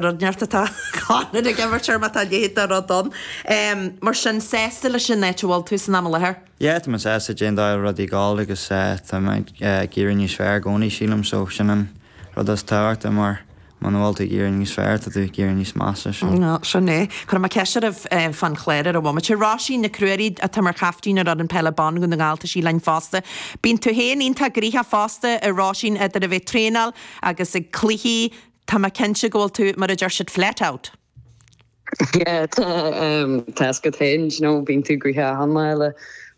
Rud inteacht atá Conlon ag imirt air má tá a leithéid de rud ann. Mar sin, sásta leis an áit a bhfuil tú san am i láthair? Yeah, tá mé sásta, déan dá fhir rudaí gála agus tá mé ag éirí níos fearr i gcónaí, sílim, so sin an rud is tábhachtaí mar muna bhfuil tú ag éirí níos fearr, tá tú ag éirí níos measa, so. Nó, sin é. Cuirfidh mé ceist oraibh fán chlár ar an bhomaite. Róisín Nic Ruairí, atá mar chaptaen ar fhoireann peile ban Dhún na nGall, tá sí linn fosta. Bíonn tú féin iontach gnoitheach fosta a Róisín idir a bheith ag traenáil agus ag cluichí, Tá mé cinnte go bhfuil tú, mar a deir siad, flat out! Yeah, tá, ehm, tá a fhios agat féin, you know, bíonn tú gnoitheach achan lá le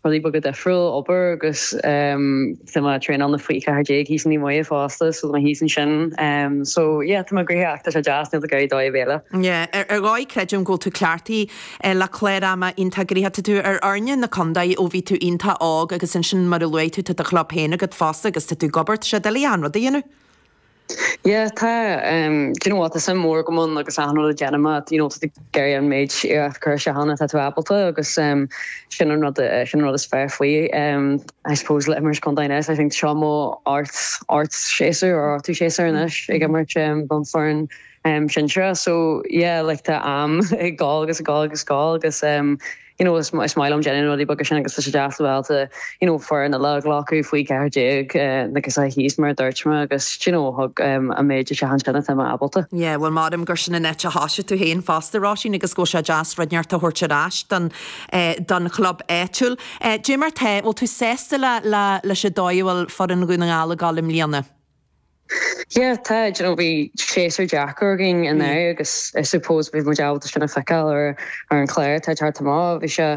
rudaí beaga difriúil, obair agus, ehm, tá mé traenáil na faoi ceathair déag thíos i Naomh Muire fosta, so tá mé thíos ansin. Ehm, so, yeah, tá mé gnoitheach ach tá sé deas níl mé ag iarraidh dóigh ar bith eile. Yeah, ar, ar dhóigh creidim go bhfuil tú cleachtaithe eh, le clár ama iontach gnoitheach. Tá tú ar fhoirne na contae ó bhí tú iontach óg agus ansin mar a luaigh tú tá do chlub féin agat fosta agus tá tú ag obair, tá sé doiligh achan rud a dhéanamh. Yeah tá ehm do you know what tá suim mhór agam ann agus aithne le déanamh maith do you know tá tú ag iarraidh an méid iarracht a chur isteach ann atá tú ábalta agus ehm sin an rud eh sin an rud is fearr faoi ehm I suppose le imirt contae anois I think seo mo ocht ocht séasúr or ochtú séasúr anois ag imirt ehm don foireann ehm sinsearach so yeah like tá am ag gabháil agus ag gabháil agus ag gabháil agus ehm you know is is maith liom déanamh na rudaí beaga sin agus tá sé deas bheith ábalta you know foireann eile a ghlacadh faoi 14 eh, na girseachaí thíos mar a dúirt mé agus do you know thug em, an méid isteach ansin atá mé ábalta. Yeah, bhuel creidim gur sin an áit a thosaigh tú féin fosta Róisín agus go bhfuil sé deas rud inteacht a thabhairt ar ais don, eh, don chlub áitiúil. Eh, Dé mar tá, bhfuil tú sásta le, le, leis an dóigh a bhfuil foireann Dhún na nGall ag dul i mbliana? Yeah, tá, you know, bhí séasúr deacair againn anuraidh agus I suppose beidh muid ábalta sin a fheiceáil ar ar an chlár atá ag teacht amach. Bhí sé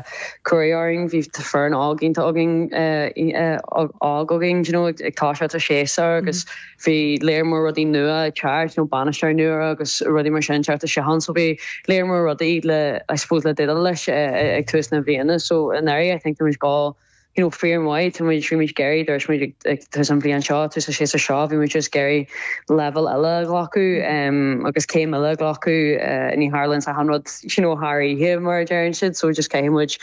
cruaidh orainn, bhí foireann óg iontach againn óg againn, you know, ag toiseacht an séasúr agus bhí lear mór rudaí nua ag teacht, you know, bainisteoir nua agus rudaí mar sin ag teacht isteach ann. So bhí lear mór rudaí le, I suppose, le déileáil leis ag tús na bliana. So anuraidh I think tá muid dhá you know, fíormhaith, tá muid, bhí muid ag iarraidh, dúirt muid ag tús an bhliain seo, tús na séasúr seo, bhí muid just ag iarraidh leibhéal eile a ghlacadh agus céim eile a ghlacadh, ní tharlaíonn achan rud, you know, thar oíche, mar a deireann siad, so just caithfidh muid,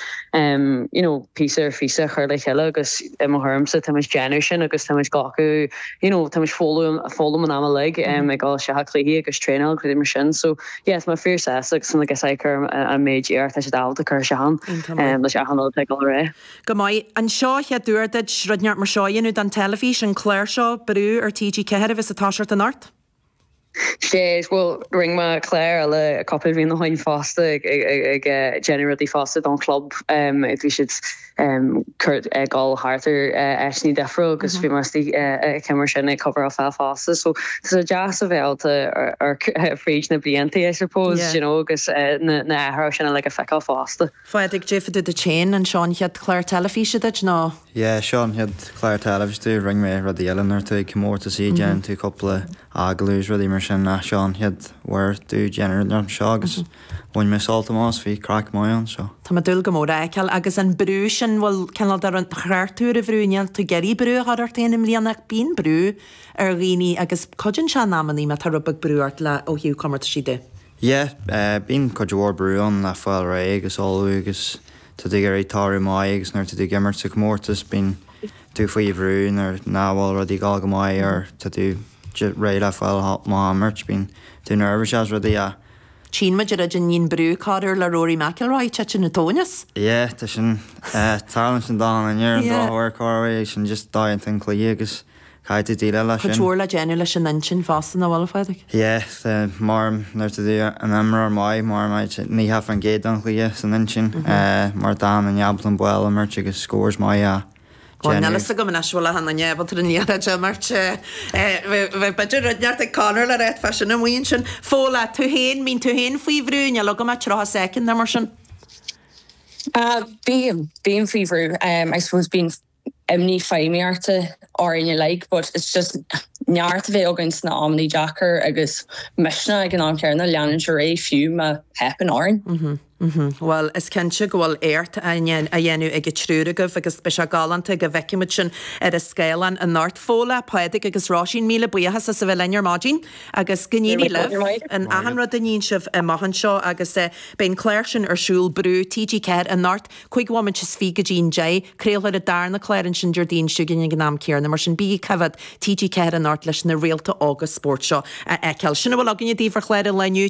you know, píosa ar phíosa a chur le chéile agus i mo thuairimse, tá muid déanamh sin agus tá muid glacadh, you know, tá muid foghlaim an am uilig ag dul isteach i gcluichí agus traenáil agus rudaí mar sin, so. Yeah, tá mé fíorshásta, so na girseachaí ag cur an méid iarracht atá siad ábalta cur isteach ann, leis achan rud atá ag dul ar aghaidh. Go maith. An seo an chéad uair duit rud inteacht mar seo a dhéanamh don teilifís, an clár seo, Brú ar TG4 a bheas ag toiseacht anocht. Is é, bhuel, rinne mé clár eile cúpla bliain ó shoin fosta ag déanamh rudaí fosta don chlub, bhí siad cuairt ag dul thart ar áiteanna difriúla agus bhí mé istigh ag céim mar sin ag cabhair a fháil fosta, so Tá sé deas a bheith ábalta amharc fríd na blianta I suppose you know agus na hathruithe sin uilig a feiceáil fosta. Phádraig, cad é fá dtaobh duit féin, an seo an chéad chlár teilifíse duit nó? Yeah, seo an chéad chlár teilifíse, rinne mé rudaí eile nuair atá tú ag comórtaisí, déanann tú cúpla agallamh is rudaí mar sin ach seo an chéad uair domh déanamh rud mar seo agus bhain mé sult amach as, bhí craic maith ann so. Tá mé ag dúil go mór é a fheiceáil agus an brú sin, bhuel, cineál de, ar cheart a rá brú, níl tú ag iarraidh brú a chur ort féin i mbliana ach bíonn brú ar dhaoine agus cuidíonn sé in amannaí má tá rud beag brú ort le ó thaobh comórtaisí de. Yeah, bíonn cuid mhór brú ann le fáil réidh agus ullmhú agus tá tú ag iarraidh toradh maith agus nuair atá tú ag imirt sa chomórtas bíonn tú faoi bhrú nuair nach bhfuil rudaí ag dul go maith or tá tú réidh le fáil amach a imirt, bíonn tú nervous is rudaí a. Chíonn muid an rud a níonn brú corr uair le Rory McIlroy, titeann an tóin as. Yeah, tá sin. Tarlaíonn sin do an an ar an drochuair corr uair, sin just an dóigh a dtéann an cluiche agus. Caithfidh tú déileáil leis sin. Cuid mhór le déanamh leis an intinn fosta, nach bhfuil, a Phádraig? Yeah, the, maram, nuair atá tú i d'imreoir maith, maram, I, the, nócha fán gcéad den chluiche san intinn, eh, mar tá tú in inmhe an bál a imirt agus scores maith a Bhuel, níl a fhios agam anois bhfuil a an neamh an trína dhéanamh de imirt, eh, eh, bheith, bheadh b'fhéidir rud inteacht ag Conor le ráit fá sin an mhaíonn sin. Fódhla, tú féin, an mbíonn tú féin faoi bhrú, níl agam ach tríocha second nó mar sin. Ah, bím, bím faoi bhrú, em, I suppose bím, imní feidhmíochta orainn uilig but it's just neart a bheith againn sna amannaí deacair agus misneach ag an am céanna leanúint ar aghaidh fiú má theipeann orainn. Bhuel, is cinnte go bhfuil éacht á dhéanamh ag an triúr agaibh agus beidh sé galánta go bhfeicfimid sin ar an scáileán anocht. Fódhla, Pádraig agus Róisín, míle buíochas as a bheith linn ar maidin agus go n-éirí libh in achan rud a níonn sibh amach anseo agus beidh an clár sin ar siúl, Brú, TG4, anocht. Cúig bhomaite is fiche go dtí an deich, craolfar an darna clár ansin Déardaoin seo chugainn ag an am céarna, mar sin bígí ag coimheád TG4 anocht leis na réalta óga spóirt seo a fheiceáil. Sin a bhfuil againne daoibh ar chlár an lae inniu.